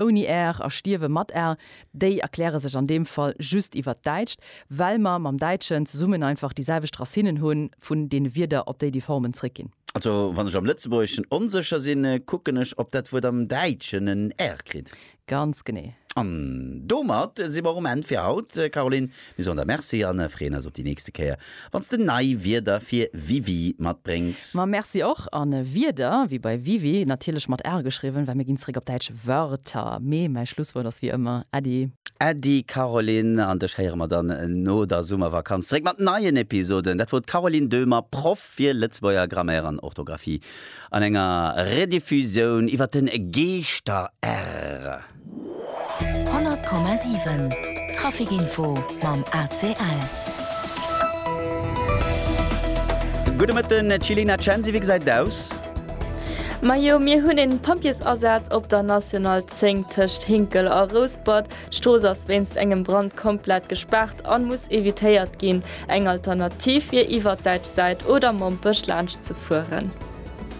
ouni Är a stierwe mat Är, déi erkläre sech an deem Fall just iwwer d'Däitscht, well mer mam Däitschen zesummen einfach déi selwecht Racinen hu vun deene Wierder, op déi déi Formen zréckginn. Also wann ech am Lëtzebuergeschen onsécher sinn, kucken ech, ob dat Wuert am Däitschen en R kritt. Ganz genee. An domat si mer um Enn fir haut, Caroline. Mir soen der Merci an freeën eis op déi nächste Kéier wanns de nei Wierder fir Wiwi matbréngs. Ma Merci och an Wierder wéi bei Wiwi, natierlech mat R geschriwwen, well mir ginn zeréck op däitsch Wörter. Mee mäi Schlusswuert ass wéi ëmmer Äddi. Äddi Caroline an dech héiere mer dann no der Summervakanz zeréck mat neien Episoden. Dat wor d'Caroline Döhmer, Proff fir Lëtzebuerger Grammaire an Orthografie an enger Rediffusioun iwwer den Geeschter-R. 100,7 Trafic Info mam ACL. Gudde Mëtten, d'Jilena Censi, wéi gesäit et aus? Majo, mir hunn een Pompjeesasaz op der National 10 tëscht Hinkel a Rouspert. D'Strooss ass wéinst engem Brand komplett gespaart an muss evitéiert ginn. Eng Alternativ wier iwwert däitsch Säit oder Mompech laanscht ze fueren.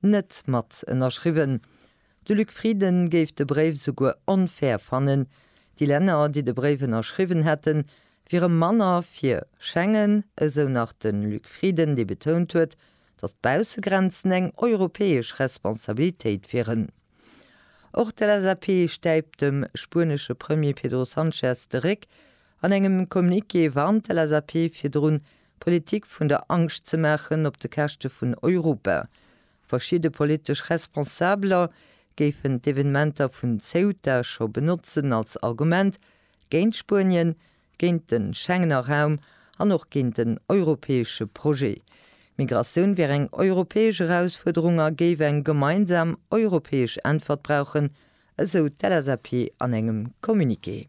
net mat ënnerschriwwen. De Luc Frieden géif de Bréif esouguer onfair fannen. Déi Länner, déi de Bréif ënnerschriwwen hätten, wiere manner fir Schengen, esou nach de Luc Frieden, dee betount huet, datt d'Baussegrenzen eng europäesch Responsabilitéit wieren. Och d'LSAP stäipt dem spuenesche Premier Pedro Sanchez de Réck, An engem Communiqué warnt d'LSAP virdrun, Politik vun der Angscht ze maachen op de Käschte vun Europa. Verschidde politesch Responsabeler géifen d'Evenementer vun Ceuta scho benotzen als Argument géint Spuenien, géint de Schengener Raum an och géint den europäesche Projet. Migratioun wier eng europäesch Erausfuerderung a géif eng gemeinsam europäesch Äntwert brauchen, esou d'LSAP an engem Communiqué.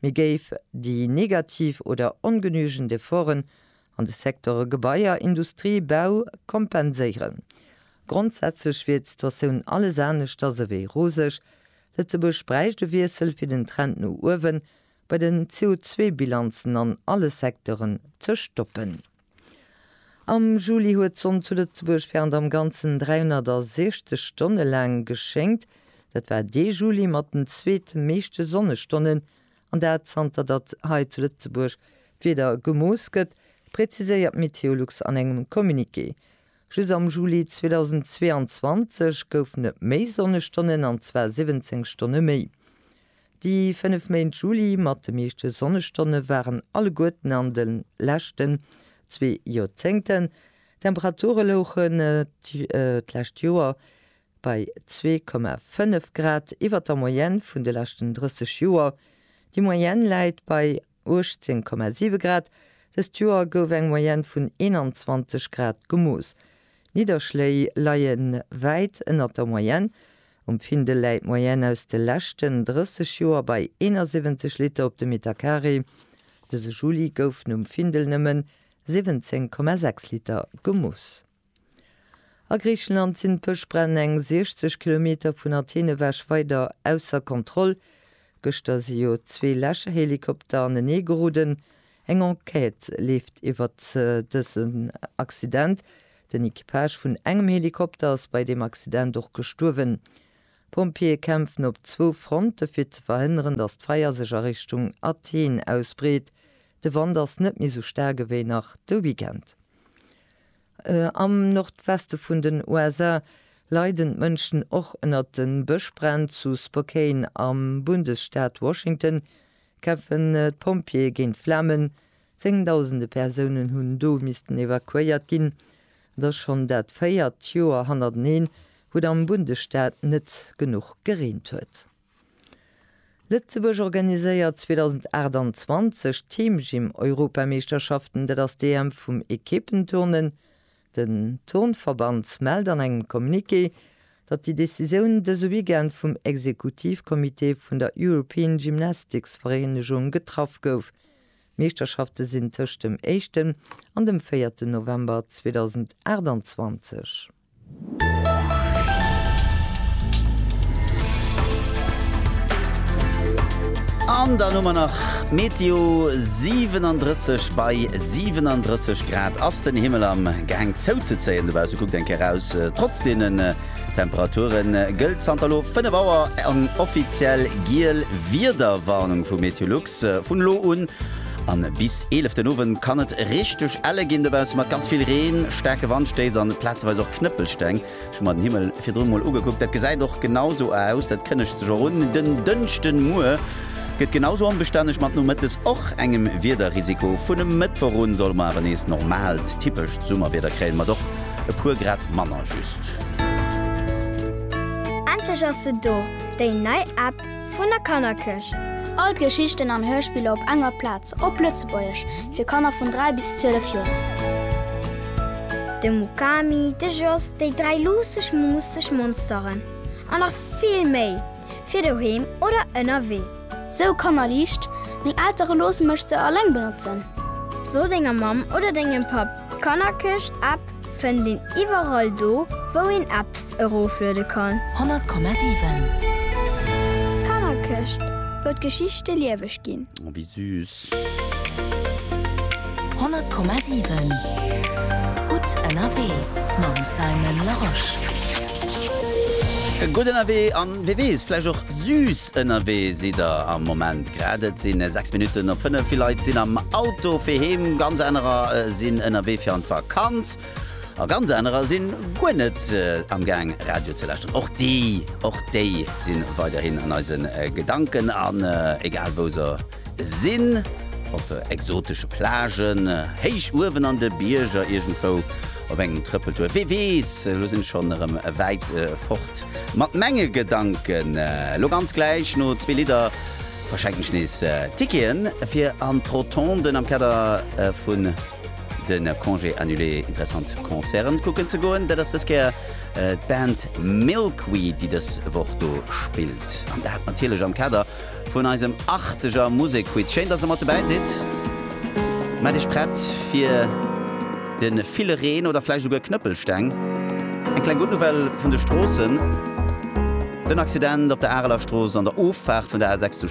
Mir géif déi negativ oder ongenügend Efforten an de Secteure Gebaier, Industrie, Bau kompenséieren. Grondsätzlech wier d'Situatioun alles aneschters ewéi roseg. Lëtzebuerg bräicht e Wiessel, fir den Trend no uewen bei den CO2-Bilanzen an alle Secteuren ze stoppen. Am Juli huet d'Sonn zu Lëtzebuerg während am Ganzen 360 Stonne laang geschéngt. Dat war dee Juli mat den zweet meeschte Sonnestonnen, an dat zanter datt hei zu Lëtzebuerg d'Wieder gemooss gëtt, präziséiert Meteolux an engem Communiqué. Just am Juli 2022 goufen et méi Sonnestonnen, an zwar 17 Stonne méi. Déi 5 Méint Juli mat de meeschte Sonnestonne waren alleguerten an de leschten zwee Joerzéngten. D'Temperature louche d'lescht Joer bei 2,5 Grad iwwer der Moyenne vun de leschten 30 Joer. Déi Moyenne läit bei 18,7 Grad, dëst Joer gouf eng Moyenne vun 21 Grad gemooss. D'Nidderschléi leie wäit ënnert der Moyenne. Um Findel läit d'Moyenne aus de leschten 30 Joer bei 71 Liter op de Metercarré. Dëse Juli goufen um Findel nëmmen 17,6 Liter gemooss. A Griichenland sinn d'Bëschbränn eng 60 Kilometer vun Athen ewech weider ausser Kontroll. Gëschter si jo zwee Läscherhelikopter anenee geroden. Eng Enquête leeft iwwert dësen Accident. Den Equipage vun engem Helikopter ass bei deem Accident och gestuerwen. D'Pompjeeë kämpfen op zwou Fronte fir ze verhënneren, datt d'Feier sech a Richtung Athen ausbreet. De Wand ass net méi sou staark ewéi nach de Weekend. Am Nordweste vun den USA leiden d'Mënschen och ënnert de Bëschbränn. Zu Spokane am Bundesstaat Washington kämpfen d'Pompjeeë géint d'Flamen. Zéngdausende Persounen hunn do missten evakuéiert ginn. Et ass schonn dat véiert Joer hannerteneen, wou et am Bundesstaat net genuch gereent huet. Lëtzebuerg organiséiert 2028 d'Teamgym-Europameeschterschaften, dat ass d'EM vum Ekippen-Turnen. Den Turnverband mellt an engem Communiqué, datt déi Decisioun dëse Weekend vum Exekutivcomité vun der European Gymnastics Vereenegung getraff gouf. D'Meeschterschafte sinn tëscht dem éischten an dem véierten November 2028. An dann hu mer nach d'Meteo, 37 bei 37 Grad ass den Himmel am Gaang zouzezéien, dobausse kuckt eng Kéier raus. Trotz deenen Temperature gëllt zanter elo 5 Auer eng offiziell giel Wiederwarnung vu Meteolux. Vun elo un An bis 11 den Owend kann et richteg elle ginn dobaussen, mat ganz vill Reen, staarke Wandstéiss an plazeweis och Knëppelsteng. Ech hu mer den Himmel virdrun mol ugekuckt, dat gesäit och genau esou aus, dat kënnegt sech och un. Den Dënschdemuer gëtt genau esou onbestänneg, mat nomëttes och engem Wiederrisiko. Vun e Mëttwoch un solle mer awer nees normaalt, typescht Summerwieder kréien, mat och e puer Grad manner just. Endlech ass se do, déi nei App Vun der Kannerkëch. All d'Geschichten an Hörspiller op enger Plaz, op Lëtzebuergesch, fir Kanner vun 3 bis 12 Joer. De Mukami, de Jos, déi dräi luusseg, muusseg Monsteren an nach vill méi, fir doheem oder ënnerwee. Sou kannerliicht, meng Eltere loosse mech se alleng benotzen. So denger Mamm oder dengem Papp d'Kannerkëch-App. Fënnt een iwwerall do wou een Apps erofluede kann. 100,7. D'Kannerkëscht, wou d'Geschichte lieweg ginn. Oh wéi süß. 100,7. Gutt ënnerwee mam Simon Larosche. Gutt ënnerwee an wee weess, vläicht och süß ënnerwee sidd der am Moment grad. Et si 6 Minutten op 5. Vill Leit sinn am Auto fir heem, ganz anerer sinn ënnerwee fir an d'Vakanz. Kand's, a ganz anerer sinn guer net am gaang Radio ze lauschteren. Och déi, och déi sinn weiderhin an eisen Gedanken an egal wou se sinn, op exotesche Plagen, héich uewen an de Bierger, iergendwou op engem Trëppeltour, wee weess, elo sinn ech schonn erëm wäit fort mat menge Gedanken. Elo ganz gläich no zwee Lidder verschenken ech nees Ticketen fir an d'Rotonden am Kader vun Den Congé annulé, interessant Concerten kucken ze goen, dat ass dës Kéier d'Band Milkweed, déi dës Woch do spillt. An dat natierlech am Kader vun eisem arteger Musekquiz. Schéin, dass der mat dobäi sidd. Maach iech prett fir de ville Reen oder vläicht esouguer Knëppelsteng. Eng kleng gutt Nouvelle vun de Stroossen, Den Accident op der Areler Strooss an der Offaart vun der A6 zu.